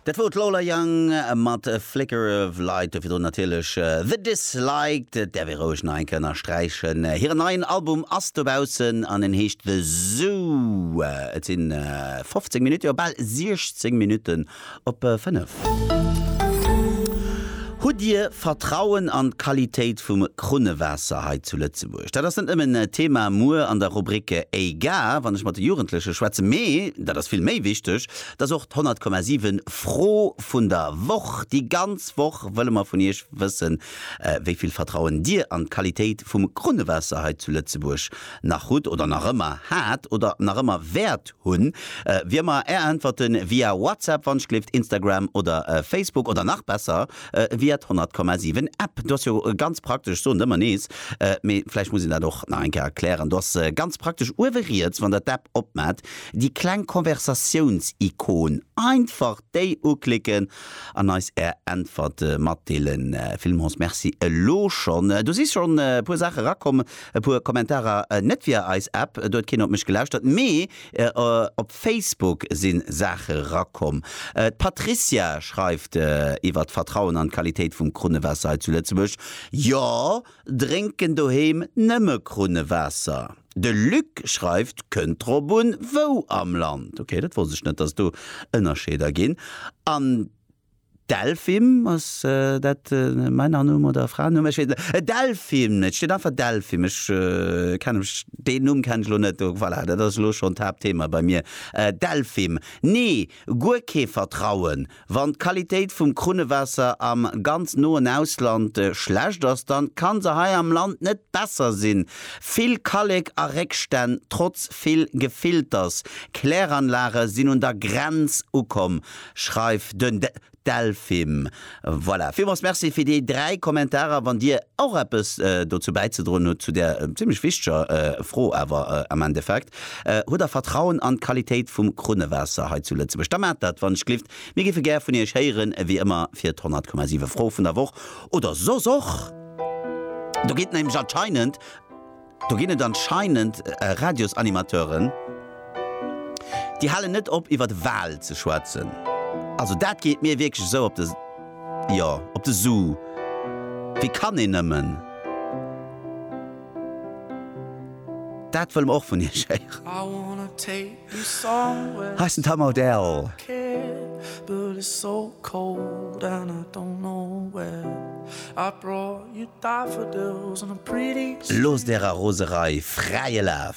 Dat wor d'Lola Young mat Flicker of Light, dovir natierlech The Disliked. Et däerf ee roueg nach eng Kéier ënnersträichen, hiren neien Album ass dobaussen an en heescht The Zoo. Et si 15 Minutten, jo bal 16 Minutten op 5. Hutt Dir Vertrauen an d'Qualitéit vum Krunnewaasser hei zu Lëtzebuerg? dat ass net nëmmen Thema muer an der Rubrik EIGA, wann ech mat de Jugendleche schwätzen, mee, dat ass vill méi wichteg, dat ass och d'Honnertkommasiwwen Fro vun der Woch. Déi ganz Woch wëlle mer vun Iech wëssen, wéi vill Vertrauen Dir an d'Qualitéit vum Krunnewaasser hei zu Lëtzebuerg nach hutt oder nach ëmmer hat oder nach ëmmer wäert hunn. Wier mer Är Äntwerten via WhatsApp, Wonschklift, Instagram oder Facebook oder nach besser, Wiert 100,7 App. Do ass jo ganz praktesch, soen der ëmmer nees, mee vläicht muss een dat och nach eng Kéier erklären, do ass ganz praktesch uewe riets, wann der d'App opmaacht, déi kleng Konversatiounsikon. Einfach déi uklicken an eis Är Äntwerte matdeelen. Villmools Merci elo schonn. Do si schonn e puer Saache erakomm, e puer Kommentarer, net via eis App, do huet keen op mech gelauschtert, mee Op Facebook si Saache rakomm. D'Patricia schreift iwwer d'Vertrauen an d'Qualitéit vum Krunnewaasser hei zu Lëtzebuerg, Jo, drénken doheem nëmme Krunnewaasser. De Luc schreift, Kënnt drop un, wou am Land. Ok, dat wosst ech net, dass et do Ënnerscheeder ginn. An Delphim, ass dat e Männernumm oder e Fraennumm? Ech weess net. Delphim, et steet einfach Delphim. Ech kenne mech, deen Numm kenne ech elo net. Voilà, dat ass elo schonn d'Haaptthema bei mir. Delphim, Nee, guer kee Vertrauen. Wann d'Qualitéit vum Krunnewaasser am ganz noen Ausland schlecht ass, dann ka se hei am Land net besser sinn. Vill Kallek a Réckstänn, trotz vill Gefilters. Kläranlage sinn un der Grenz ukomm. schreift den Delphim. Voilà, villmools Merci fir déi 3 Kommentarer. Wann Dir och eppes dozou bäizedroen hutt, zu där zimlech wichteger Fro awer am Endeffekt, Hutt Der Vertrauen an d'Qualitéit vum Krunnewaasser hei zu Lëtzebuerg? Da maacht dat wann-ech-gelift. Mir géife gär vun Iech héieren, wéi ëmmer fir d'Honnertkommasiwefro vun der Woch oder soss och. Do geet nämlech anscheinend. Do ginn et anscheinend Radiosanimateuren, déi halen net op iwwer de Wal ze schwätzen. Also dat geet mir wierklech esou op de, jo, op de Su. Wéi kann een nëmmen dat wëll mer och vun iech héieren. Heiss den Tom Odell. Loosst ärer Roserei fräie Laf!